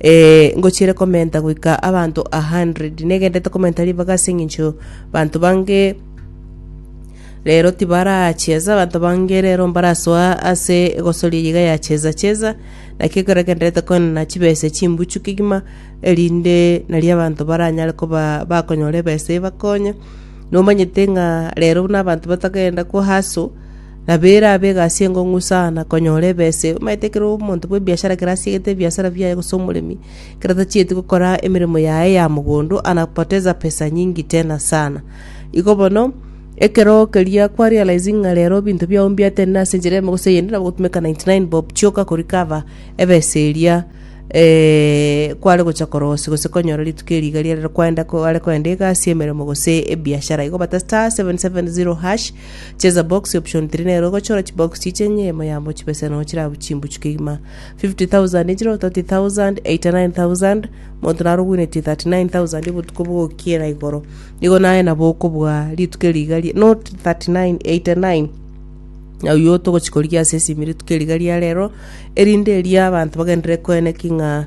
Ee, ngochiire komenta goika abanto a hundred. Negenderete komenta ribaga ase engencho banto bange rero tibaracheza, abanto bange rero mbarasoa ase egosoria eyio iga ya cheza cheza, naki ekero egenderete koenana chibesa chimbuchu kegima, erinde nario abanto baranyare koba bakonyora ebesa ebakonye. Nomanyete ng'a rero buna abanto batagenda ko hustle, na bera abe egasi enkong'u sana na konyora ebese. Omanyete ekero omonto bw'ebiashara kera asiegete ebiasara biaye gose omoremi, ekero tachieti gokora emeremo yaye ya mogondo anapoteza pesa nyingi tena sana. Igo bono, ekero keria kwa realizing ng'a rero ebinto biao mbiatenena ase enchera eyemo gose eyende nabo ogotumeka 99 bob chioka ko recover ebesa eria kware gocha korosia gose konyora rituko eri iga riarero kwaenda kware koenda egasi, emeremo gose ebiashara. Igo bata *770#. Cheza box option 3 nero ogochora chibox chiche enyemo yamo chibese nonya chire abwo chimbuchu kegima 50000 echiro 30000 89000 monto naro ogwenetie 39000 obotuko bogokiera igoro igo naye nabo okobua rituko rigari not 39 89 oyuo togochikorigia ase esimi rituko riga ria rero erinde eria abanto bagenderere koeneki ng'a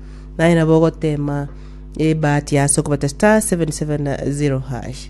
Naye nabo ogotema ebahati ase okobeta star 770 hash.